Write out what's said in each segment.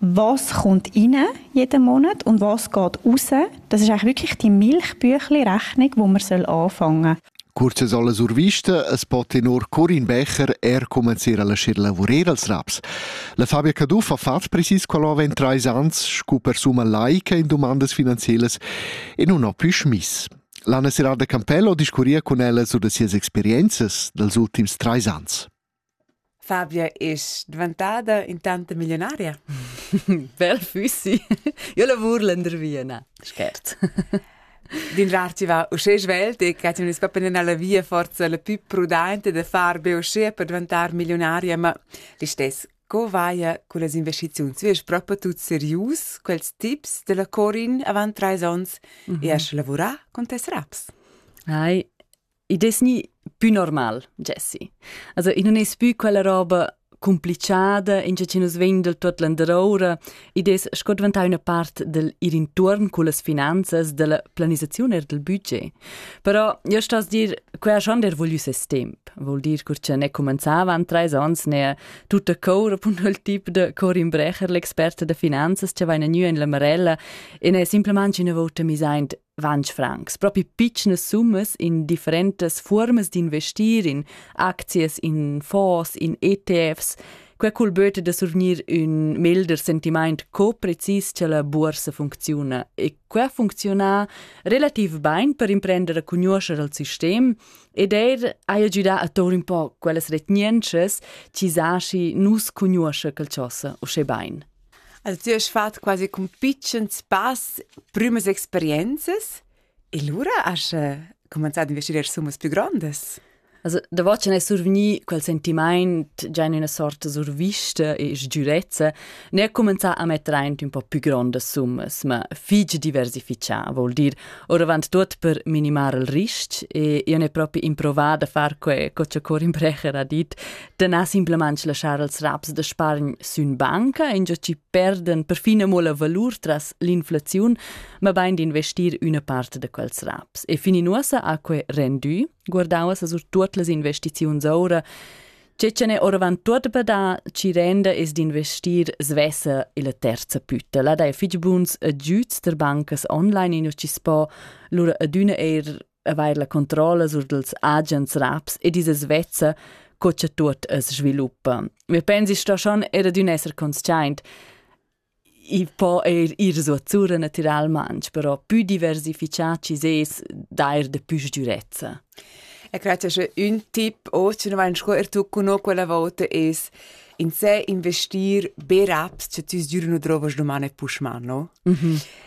Was kommt rein jeden Monat und was geht raus? Das ist eigentlich wirklich die Milchbüchli-Rechnung, wo man anfangen soll. Kurz es alle zur Vista, es pote nur Corin Becher, er commenziera la scir lavurer als raps. La Fabia Caduff ha fatg precis quella avant trais ans, scu per summa laica in domandas finanzielas e non ho più schmiss. L'Anna Serrada Campello discurria con ella su da sias experienzas dels ultims trais ans. Fabia es dvantada intanta millionaria? Bel füssi. Io lavur lendervia, na, schert. D'inrar ti va usché svelt e che ti non spappen alla via forza la più prudente da far be usché per diventar milionaria, ma l'istess co vaia con las investiziuns? Wie ist proprio tut serius quels tips della Corin avant trais ons mm -hmm. e a sche lavurà con tes raps? Ai, I des ni pü normal, Jessie. Also, i non es pü quella roba complichada, in che nus vegn del tuot landeroura, i des sco diventà üna part del ir intuorn cullas finanzas, della planisazione e del budget. Però io sto dir, quella schon der voglius es temp, vuol dir cur che ne comenzava an treis ons ne tutta cour appunto il tip de Corin Brecher, l'experte de finanzas, che va in gnü in la Marella e ne simplemente una volta mi seint 20 francs, propi pitschnas summas in differentas fuormas d'investir in aczias, in fonds, in ETFs. Quei cul böte da survgnir ün melder sentiment co precis cha la boursa funcziuna. E quei funcziuna relativ bain per imprender a conoscer al sistem ed eir haja giudà a tour un po quellas retgnentschas chi zaschi nus conosce quel chosa uschè bain. El ti has fatg quasi cun pitschens pass prümas experienzas e lura has cumanzà ad investier summas plü grondas. Also, da vacin è survgni quel sentimaint già in una sorta survista e sgiurezza, ne comenzà a metter aint un po' più grandes summas, ma fig diversifichà, vuol dir, oravant tuot per minimar il risc e io n'he propi improvat da far que co cha Corin Brecher ha dit, da na simplamain laschar els raps da spargn sün banca ingio chi perdan perfin amo la valur tras l'inflaziun, ma bain d'investir üna part da quels raps. E fin in uossa ha que rendü, guardava sa sur tuot las investiziuns oura, che ce n'è oravant tuot per da chi renda es d'investir svessa illa terza pütta. La dai fich buns agüds der bancas online, ingio chi s'po lura adüna eir avair la controlla sur dals agents raps ed isas vezza co cha tuot as sviluppa. Mi pensi sto schon era d'ün esser consciaint. I po eir ir suotsura natüralmaunt, però pü diversifichà chi sez d'eir da pü sgürezza. E credo che un tip oggi non vai scuoler tu con quella volta es in se investir be raps che ti sgürno trovas domani pushman, no? Mhm. Mm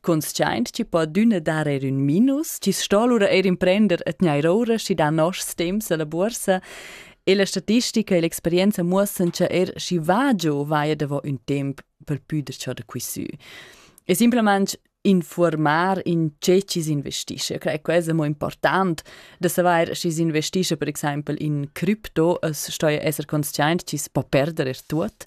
Consciaint chi po adüna dar eir ün minus, chi sto lura eir imprender a tgnair oura schi da noschs temps a la buorsa, e la statistica e l'experienza muossan cha eir schi va giò vaia davo ün temp pel püder ciò da quisü. E simplamaing informar in che chi s'investisce. Cre, quest è mo important da saver chi s'investisce per exempel in cripto, es stoja esser conscient chi si po perder er tuot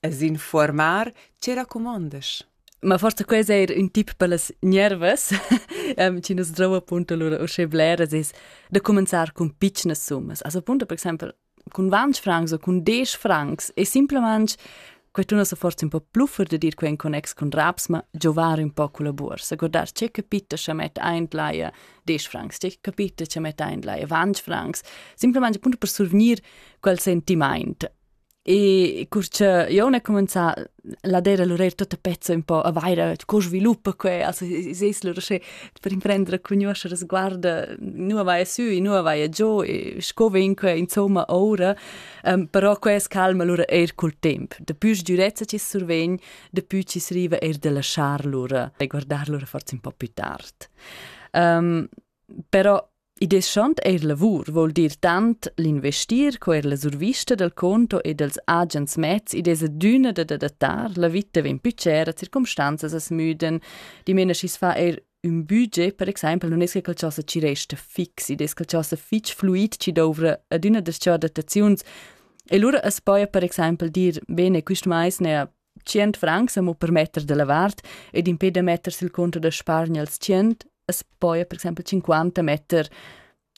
es informar che racumondas. Ma forsa quels eir ün tip per las gnervas, um, chi nos drou appunto lura uschè bleras es da cumanzar cun pitschnas summas. Also appunto per exaimpel cun 20 francs o cun 10 francs è semplicemente qualcuno sa forse un po' pluffer da dir qua in connex con raps, ma giovare un po' con la borsa. Guardar c'è capito che mette ein laia 10 francs, c'è capito che mette ein laia 20 francs, semplicemente appunto per survenir quel sentiment. E cur che io ne comenza ad era lur tutta pezza un po' a vaira co sviluppa que, also seis lur sche per imprendere cugnuoscher sguarda nu vai sü e nu vai giù e sco vegn que insomma ora, um, però que es calma lura eir cul temp. Depui sdürezza chi survegn, depui chi s'riva eir da lasciar lura e guardar lura forza un po' più tard. Um, però I deschant eir lavur voul dir tant l'investir co eir la survista dal conto e dals agens mezs id es adüna da adattar, la vita vegn pü tschera, circumstanzas as müdan, dimena schi's fa eir ün budget, per exaimpel nun es che quel chosa chi resta fix, id es quel chosa fich fluid chi douvra adüna das-cha adattaziuns e lura as poja per exaimpel dir, bene, quist mais n'haja tschient francs amo per metter dalla vart ed impè da metter sil conto da spargner als tschient as poja per exempel cinquanta metter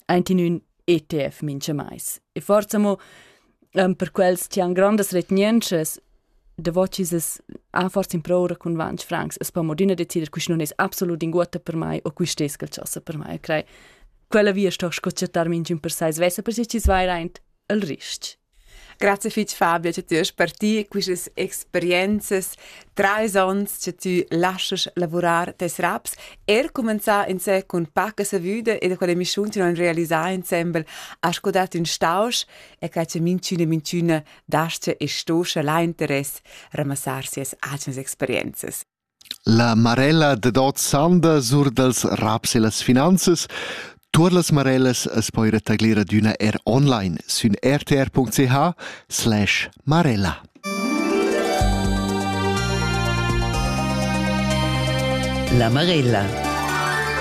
aint in ün ETF mincha mais. E forsa amo ehm, per quels chi han grandas retgnientschas davò chi s'es ha forsa improura cun ventg francs as po modüna decider quist non es absolut inguotta per mai o quist es quel ch'ossa per mai. Eu crei quella via sto sco chattar minchün per sai svessa per si chi's vair aint il ris-ch. Grazie fitg Fabio che ti has partì quistas experienzas, trais onns che ti laschas lavurar tes raps, er cumenzà insè cun paca savüda e da quella emissiun ti non realisà insembel has codat ün stausch e che che minchüna minchüna dascha e stoscha la interess ramassar sias atgnas experienzas. La marella dad ot sanda sur dals raps e las finanzas Tuor las marellas as poi retagglir adüna er online sün rtr.ch slash marella. La marella